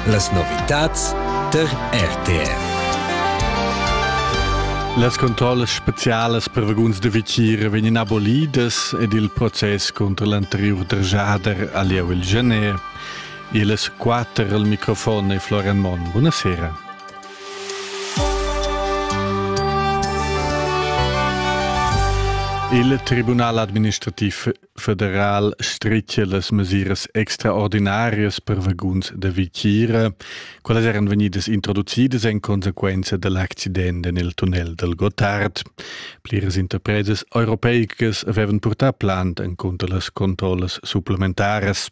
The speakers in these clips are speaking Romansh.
Las novitads tar RTR. Las controllas specialas per vaguns da vitier vegnan abolidas ed il process contra l'anteriur drgiader ha lieu il gener. Ils quatter al microfon è Florian Monn. Buonasera. Il Tribunal administrativ federal stritge las mesiras extraordinarias per vaguns da vitgira, quelles eran venidas introducidas en conseguenza dell'accident en il tunnel del Gotthard. Pliras interpresas europeicas avevan purtà plant en contra las controlles supplementares.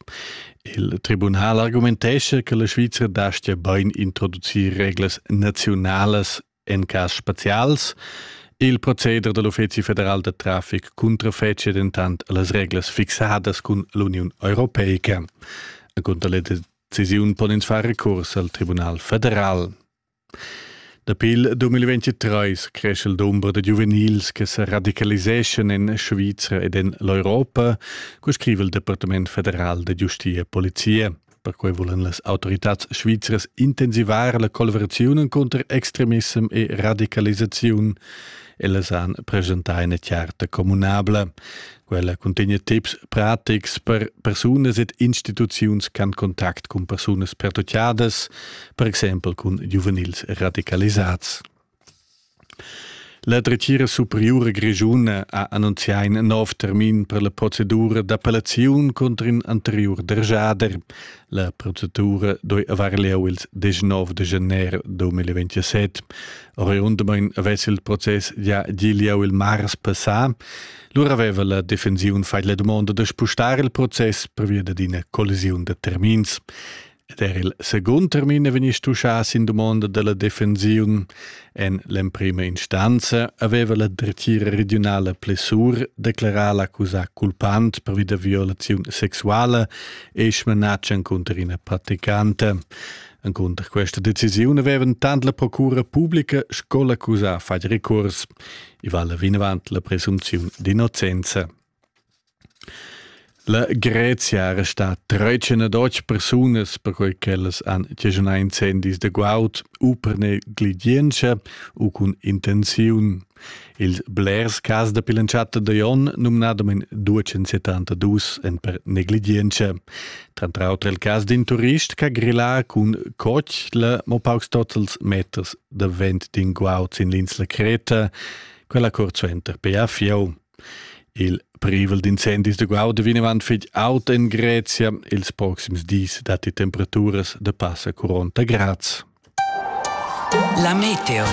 Il tribunal argumentesce che la Svizzera dastia ben introducir reglas nazionales En cas spezials il proceder da l'Uffizi federal da traffic cuntrafetschia dentant las reglas fixadas cun l'Uniun europeica. Cunter la decisiun pon ins far recurs al Tribunal federal. Dapi il 2023 cresce il dumber da giuvenils che se radicaliseschan en Svizra ed en l'Europa, co scrive il Departament federal da giustia e polizia. Perquei volan las autoritads svizras intensivar la collaboraziun cunter extremissem e radicalisaziun. Ellas han presentai ina charta communabla. Quella cuntegna tips pratics per persunas ed instituziuns che han contact cun persunas pertucciadas, per exempel cun giuvenils radicalisats. La dretgira superiura grischuna ha annunzià in nov termin per la procedura d'appellaziun cunter in anteriur dergiader. La procedura doi avar lieu ils 19 de gener 2027. Oriundamain avess il process già gi lieu il mars passà. Lura aveva la defensiun fatg la dumonda da spustar il process per via d'ina collisiun da termins. Ed er il segund termin è vegnì stuschà sin dumonda da la defensiun. En l'emprima instanza aveva la dretgira regiunala Plessur declerà l'accusà culpant pervi da violaziun sexuala e smanatg encunter ina praticanta. Encunter questa decisiun avevan tant la procura pubblica sco l'accusà fatg recurs. I vala vinavant la presunziun d'innocenza. La Grezia resta tretgina dotg persunas perquei ch'ellas han chaschunau incendis da guaud u per negligientscha u cun intenziun. Ils blers cas dapi l'entschatta da onn, numnadamein 272, ein per negligientscha. Tranter auter il cas d'in turist che ha grillà cun cotg la mo paucs totals meters da vent d'in guaud sin l'insla Creta, quella cuort suenter pia fieu. Il privel d'incendis da guauda vinavant fetg aut en Grezia. Ils proxims dis datti temperaturas da passa 40 grads. La meteo.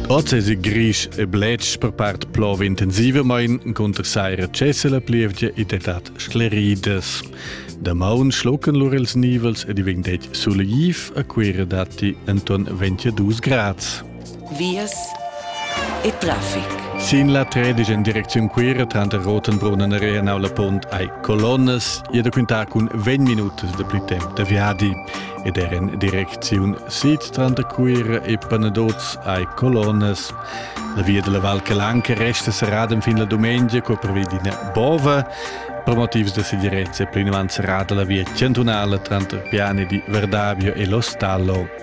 Oz è grisch e bletsch per part plova intensivamein cunter saira cessela plievgia ed edat scleridas. Damaun schlucken lur ils nivels ed i vegn det sulegif a Quera datti Anton 22 Grad. vias e traffic. Sin la tredisch en direcziun Cuira tranter Rotenbrunnen e Reenau la Pont hai colonnas e da quintar cun 20 minutas de pli temp da viadi ed er en direcziun sid tranter Cuira e Panadoz hai colonnas. La via della Val Calanca resta serrada fin la domenica co prevido in bova per motivs da segirezza plinavant serrada la via chantunala tranter Piani di Verdavio e Lo Stallo.